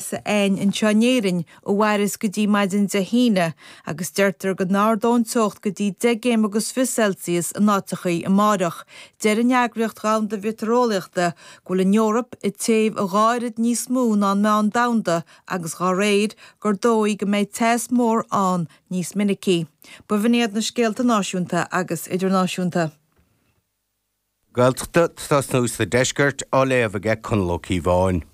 sin anseo in Éirinn ó inniu go dtí maidin Dé hAoine agus deirtear go n-ardóidh an teocht go dtí 10 gcéim agus fiche Celsius in áiteachaí amárach. Deir an Eagraíocht Dhomhanda Mheitéareolaíochta go bhfuil an Eoraip ag téamh a dhá oiread níos mó ná an meán domhanda agus dhá réir, gur dóigh go mbeidh teas mór ann níos minicí. Bab in iad na scéalta náisiúnta agus idirnáisiúnta. Gaeltachta, tá nuacht an Deiscirt á léamh aige Conall Ó Cíobháin.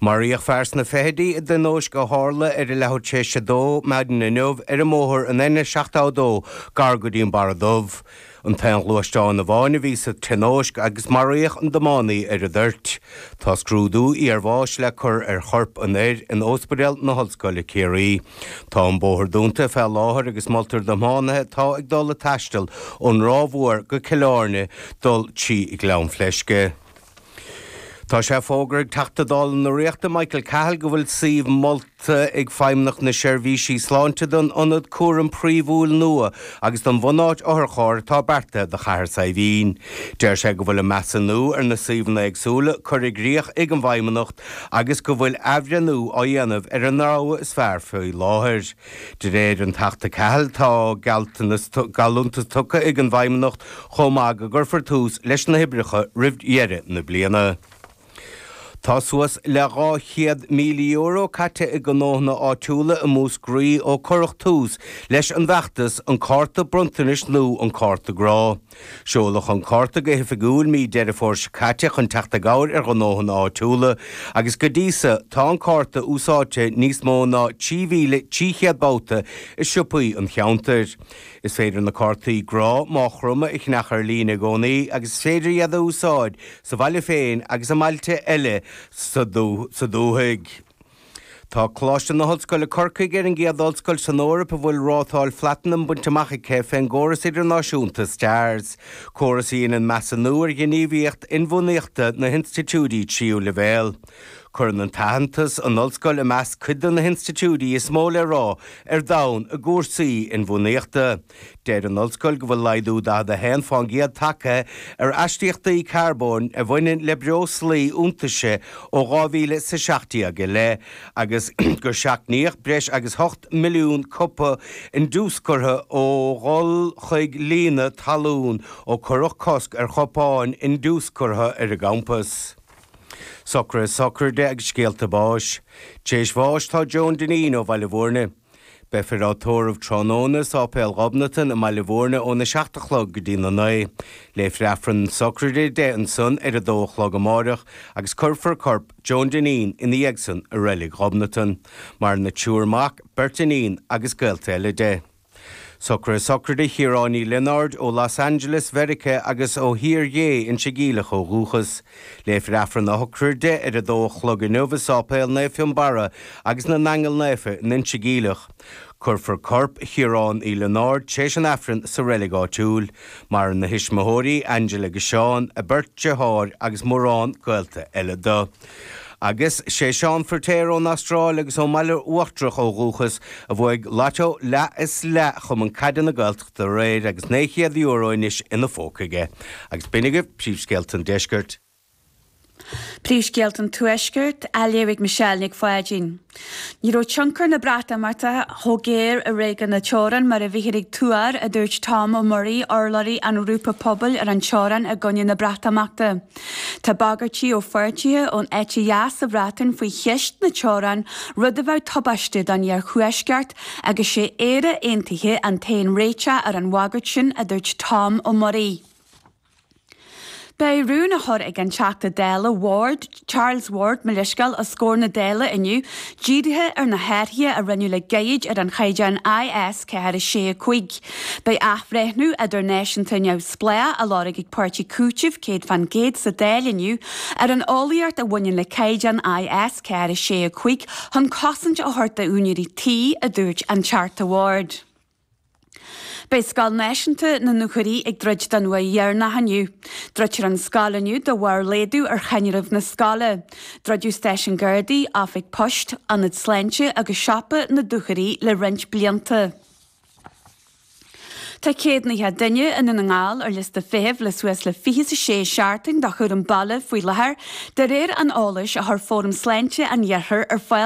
Maraíodh fear sna fichidí i dtionóisc a tharla ar a leathuair théis a dó maidin inniu ar an mbóthar an N72 gar go dtí an Barra Dubh. An t-aon ghluaisteán amháin a bhí sa tionóisc agus maraíodh an tiománaí ar an dtoirt. Tá scrúdú iar bháis le cur ar chorp an fhir in óspidéal na hOllscoile Ciarraí. Tá an bóthar dúnta fé láthair agus moltar do thiománaithe atá ag dul ag taisteal ón Ráth Mhór go Cill Airne dul trí Ghleann Fleisce. Tá sé fógartha ag Teachta Dála na Ríochta, Michael Cahill go bhfuil suíomh molta ag Feidhmeannacht na Seirbhísí Sláinte don ionad cúraim phríomhúil nua agus don bhunáit otharchairr atá beartaithe do Chathair Saidhbhín. Deir sé go bhfuil an measúnú ar na suíomhanna éagsúla curtha i gcrích ag an bhFeidhmeannacht agus go bhfuil athbhreithniú á dhéanamh ar an rogha is fearr faoi láthair. De réir an Teachta Cahill, tá geallúintis tugtha ag an bhFeidhmeannacht chomh maith go gcuirfear tús leis na hoibreacha roimh dheireadh na bliana. Tá suas le €200,000 caite ag gnóthanna áitiúla i Múscraí ó cuireadh tús leis an bhfeachtas 'An Cárta Bronntanais' nó 'An Cárta Grá'. Seoladh an cárta go hoifigiúil mí Deireadh Fómhair seo caite chun teacht i gcabhair ar ghnóthanna áitiúla agus go dtí so, tá an cárta úsáidte níos mó ná 3,300 babhta i siopaí an cheantair. Is féidir na cártaí Grá Má Chromtha a cheannach ar líne i gcónaí agus is féidir iad a úsáid sa bhaile féin agus i mbailte eile sa dúthaigh. Tá Coláiste na hOllscoile Corcaigh ar an gcéad ollscoil san Eoraip a bhfuil rátáil Phlatanam bainte amach aici fén gcóras idirnáisiúnta Stars, córas a dhéanann measúnú ar fheidhmíocht inbhuanaíochta na hinstitiúidí tríú leibhéal. Cuireann an t-aitheantas an ollscoil i measc cuid de na hinstitiúidí is mó le rá ar domhan i gcúrsaí inbhuanaíochta, Deir an Ollscoil go bhfuil laghdú 41 fán gcéad tagtha ar astaíochtaí carbóin a bhaineann le breoslaí iontaise ó 2000 is 17 i leith agus gur seachnaíodh breis agus 8 milliún cupa indiúscartha ó dhul chuig líonadh talún ó cuireadh cosc ar chupáin indiúscartha ar an gcampas. Sochraidí, sochraidí agus scéalta báis. Téis bháis tá Joan Dineen ó Bhaile Bhúirne. Beifear á tórramh tráthnóna i Sáipéal Ghobnatan i mBaile Bhúirne óna seacht a chlog go dtí na naoi. Léifear Aifreann na socraide di ansan ar a dó a chlog amáireach agus cuirfear corp Joan Dineen ina dhiaidhsan i Reilig Ghobnatan, maireann a triúr mac, beirt iníon agus gaolta eile di. Socruithe socraide Chiaráin Uí Lionáird, ó Los Angeles Mheirice agus ó Thír Ghé, Inse Geimhleach ó dhúchas. Léifear Aifreann a shocraide ar a dó a chlog inniu i Sáipéal Naomh Fionnbarra agus na nAingeal Naofa in Inse Geimhleach. Cuirfear corp Chiaráin Uí Lionáird tar éis an Aifrinn sa reilig áitiúil. Maireann a thuismitheoirí, Angela agus Seán, a beirt dritháir agus mórán gaolta eile do. Agus sé Seán Firtéar ón Astráil agus ón mBaile Uachtarach ó dhúchas, a bhuaigh Lotto leath is leath Chumann Caide na Gaelt, aréir agus €900 anois ina phóca aige. Agus b'in agaibh príomhscéalta an Deiscirt. Príomhscéalta an Tuaiscirt, á léamh ag Michelle Nic Pháidín. Ní raibh tionchar na Breatimeachta chomh géar i réigiún na teorann mar a bhíothar ag tuar, a dúirt Tom Ó Muirí, urlabhraí an ghrúpa Pobail ar an Teorainn i gcoinne na Breatimeachta. Tá bagairtí ó pháirtithe ón eite dheas sa Bhreatain faoi cheist na teorann, rud a bheadh tubaisteach don iarthuaisceart, Agus sé Éire Aontaithe an t-aon réiteach ar an bhagairt sin, a dúirt Tom Ó Muirí. Beidh rún á chur ag an Teachta Dála Ward, Charles Ward mo leithscéal, os comhair na Dála inniu, dírithe ar na hathruithe a rinneadh le gairid ar an chaighdeán IS 4, 6, 5. Beidh athbhreithniú idirnáisiúnta neamhspleách á lorg ag páirtí Cúitimh 100% sa Dáil inniu ar an eolaíocht a bhaineann le caighdeán IS Ceathair a sé a cúig chun cosaint a thabhairt d'úinéirí tí, a dúirt an Teachta Ward. Beidh scoil náisiúnta na Dúchoraidh ag druid don uair dheireanach inniu. Druidfear an scoil inniu de bharr laghdú ar dhaonáireamh na scoile. Druideadh stáisiún gardaí, oifig poist, ionad sláinte agus siopa na Dúchoraidh le roinnt blianta. Tá céad fiche duine i nDún na nGall ar liosta feithimh le suas le fiche is a sé seachtain do chúram baile faoi láthair, de réir an eolais a chuir Fóram Sláinte an Iarthair ar fáil.